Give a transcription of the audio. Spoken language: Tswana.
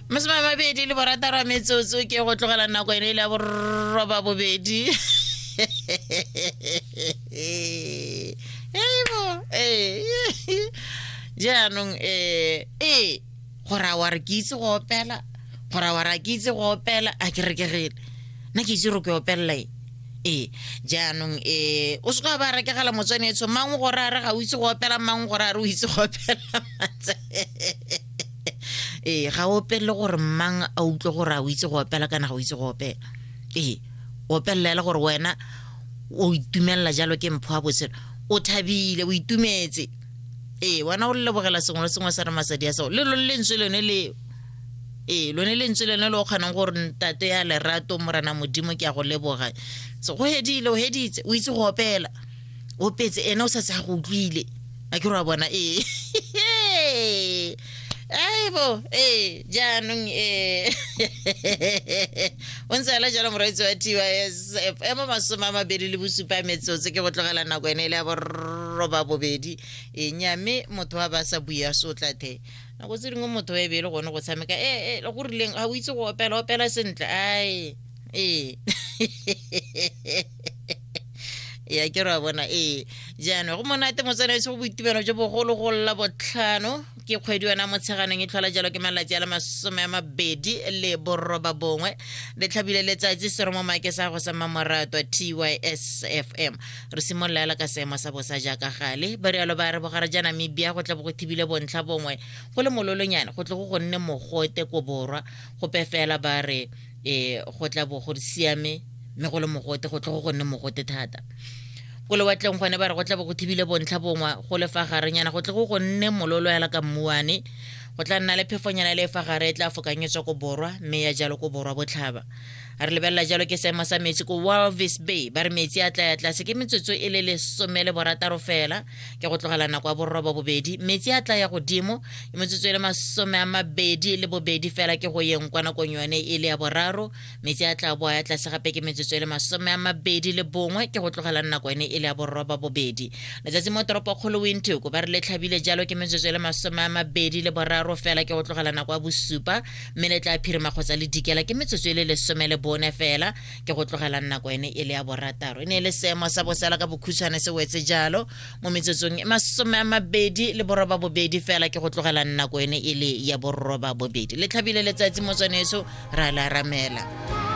masome a mabedi le borataro metsotso ke go tlogela nako ene e le ya borroba bobedi eibo ee jaanong um ee gore a wa re ke itse go opela gore a wa re a ke itse go opela a ke rekegele nna ke itse gore ke opelela e ee jaanong um o se ka ba rekegela motswanetsho mang gore a re ga o itse go opela mang gore a re o itse go opela ee ga o opelele gore mmang a utlwe gore a o itse go opela kana ga o itse go opela ee o opelelela gore wena o itumelela jalo ke mpho wa botshelo o thabile o itumetse ee wena o lebogela sengwe le sengwe sa re masadi ya seo le lo lentswe lone leo ee lone lentswe lone le o kgonang gore ntate ya lerato morena modimo ke ya go leboga so go hedile o heditse o itse go opela o petse ena o sa se a go utlwile a ke re wa bona ee aibo ee jaanong ee o ntse ala jalo moraitsi wa tys ema masome a mabedi le bosupa metsotso ke go tlogela nako ene e le ya borroba bobedi e nyame motho wa ba sa bui a sotla the nako tse dingwe motho wa ebele gone go tshameka ee go rileng ga o itse go opela opela sentle ae ee ya ke ra bona ee jaanong go monate motsana ese go boitumelo jo bogolo go lla botlhano ke kgwedi yona motsheganeng e tlhola jalo ke malatsi a le masome a mabedi le boroba bongwe le tlhabile letsatsi sero mo make sa go sa mmamoratwa tysfm re simolola ela ka seemo sa bosa jaaka gale ba rialo ba re bogare ja namibia go tle bo go thibile bontlha bongwe go le mololonyane go tle go go nne mogote ko borwa go pefela ba re e go tla bo go siame mme go le mogote go tle go gonne mogote thata ko lewatleng gone ba re go tla bo go thibile bontlha bongwe go le fa garenyana go tle go gonne mololo yala ka mmuane go tla nna le phefonyana le e fa gare e tla fokanyetswa ko borwa mme ya jalo ko borwa botlhaba re lebelela jalo ke seemo sa metsi ko walvis bay ba re metsi a tla ya tlase ke metsotso e le lesome le borataro fela ke go tlogela nako ya borrobo bobedi metsi a tla ya godimo ke metsotso e le masome a mabedi le bobedi fela ke go yeng kwa nakong yone e le ya boraro metsi a tla boa ya tlase gape ke metsotso e le masome a mabedi le bongwe ke go tlogela nako yone e le ya borroba bobedi letsatsi mo toropo kgolo wintoko ba re le tlhabile jalo ke metsotso e le masome a mabedi le boraro fela ke go tlogela nako ya bosupa mme le tla phirima kgotsa le dikela ke metsotso e le lesome le bone fela ke go tlogela nako ene e le ya borataro e ne e le seemo sa bosela ka bokhutshwane se wetse jalo mo metsotsong e masome a mabedi le boroba bobedi fela ke go tlogela nako ene e le ya boroba bobedi le tlhabile letsatsi motswaneso ra la ramela